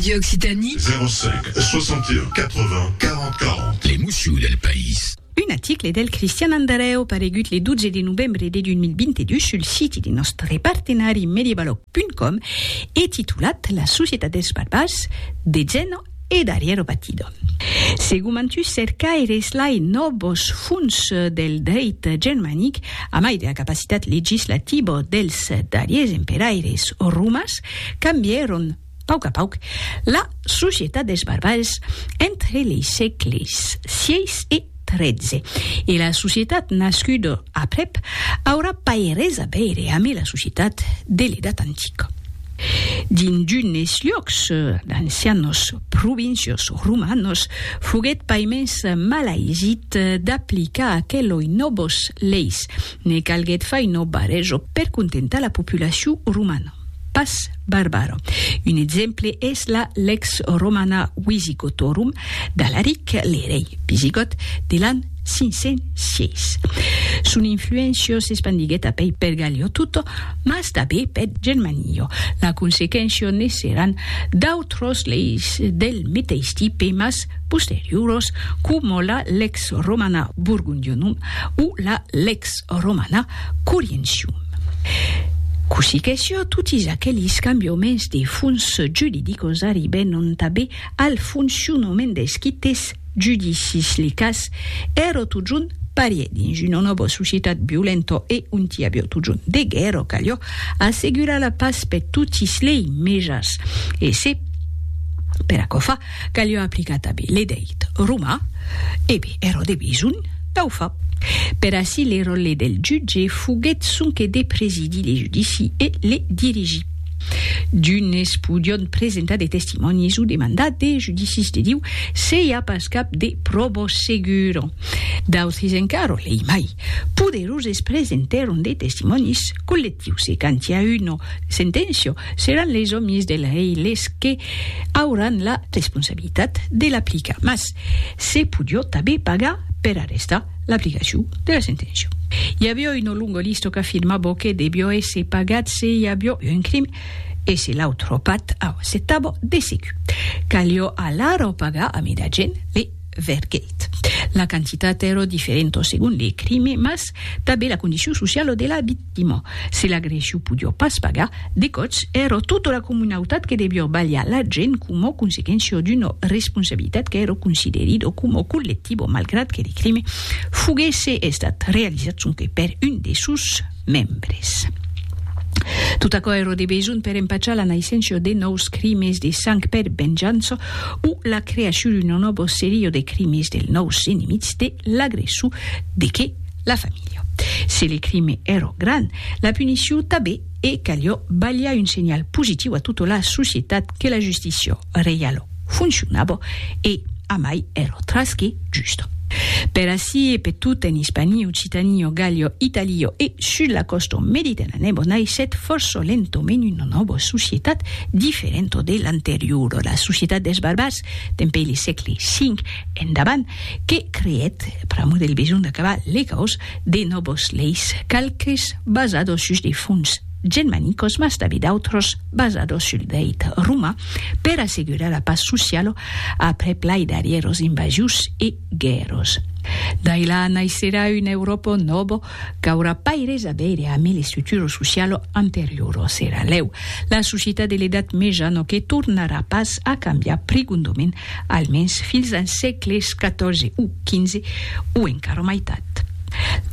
Radio Occitanie. 05 61 80 40 40. L'emocion del país. Un aticle del Cristian Andarèu paregut le 12 de novembre de 2022 sul siti de nòstre partenari Medievaloc.com e titulat La societat dels barbars, de Zeno e d'Ariero Batido. Segumantus cercaires lai nòvos fons del dreit germanic, a mai de la capacitat legislativo dels darriers emperaires romans, cambièron, Pauc a pauc, la societat dels barbals entre lei sègles sièis e tretze e la societat nascuda aprèp aurà pas res a veire amé la societat de l'Edat Antica. Dins d'unes luòcs, d'ancianos provincios romanos foguèt paimens mal aisit d'aplicar aqueloi nòbos leis, ne calguèt fai nòba reso per contentar la populacion romana. pas barbara. Un exemple es la Lex Romana Wisigotorum d'Alaric, l'erei visigòt de l'an 506. Son influéncia s'espandiguèt apèi per Gallia tota, mas tanbé per Germania. La consequéncia ne seràn d'autras leis del meteis tipe mas posterioras, coma la Lex Romana Burgundionum o la Lex Romana Corientium. Cossí que siá, totis aquelis cambiaments de fons juridicos arribèron tanben al foncionament dels quites judicis. Li cas èra totjorn parièr dins una nòva societat violenta e ont i aviá totjorn de guèrra, caliá assegurar la pas per totis lei mejas e se per aquò fa, Calió aplicar tanben le deit romà, ebe ero de besonh dau fa. Per aci le ròlle del jutge foguèt sonque de presidir le judici e le dirigir. D'unes podión presentar de testimònis o demandar de judicis de Diu se i a pas cap de pròbo segura. D'autres encara, lei mai poderoses presentèron de testimònis collectius e quand i a una senténcia Seràn les òmis del rei les que auràn la responsabilitat de l'aplicar, mas se podió tanben pagar per arrestar l'aplicacion de la senténcia. I avió una longa lista qu'afirmava que devió èsser pagat se i avió un crim e se l'autre part aucetava de segur. Calió alara pagar a mida gent le vergèit. La quantitat èra diferenta segon le crime, mas tanben la condicion sociala de l'abitacion. Dimo, se l'agressiu podió pas pagar, de còps èro tota la comunautat que devió balhar la gent coma consequéncia d'una responsabilitat qu'èro considerida coma collectiva malgrat que le crime foguèsse estat realizat sonque per un de sos membres. Tot aquò èro de besonh per empachar la naisséncia de nòus crimes de sang per venjança o la creacion d'una nòva seria de crimes dels nòus enemics de l'agressor de que La familha. Se le crime ero gran, la punisciu tabé e calió balhar un senhal positiu a tota la societat que la justicia reialo foncionabo e amai ero trasque justo. Per ací e pe tot en Ispanie, Occitanie, Gallia, Italia e sus la costa mediterranèbo naissèt fòrça lentament una nòva societat diferenta de l'anteriora, la societat des barbars, dempuèi le sègle 5 endavant, que creèt, pr'amor del besonh d'acabar legaus, de nòvos leis, qualques basados sus de fons genmanicos mas tanben d'autros basados sul dreit roman per assegurar la pas sociala aprèp lai darrièros invasius e guèrras. D'ai la naisserà una Euròpa nòva qu'aurà pas res a veire amb el estruturo socialo anterioro. Serà lèu la societat de l'edat mejano que tornarà pas a cambiar prigondoment, almens fins als sègles xiv o xv, o encara mai tard.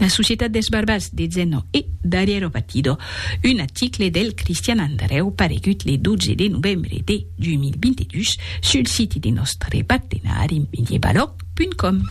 La societat dels barbars de Zeno e Dariero Batido, un article del Cristian Andrèu paregut le 12 de novembre de 2022 sul siti de nòstre partenari medievalog.com.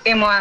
E moi,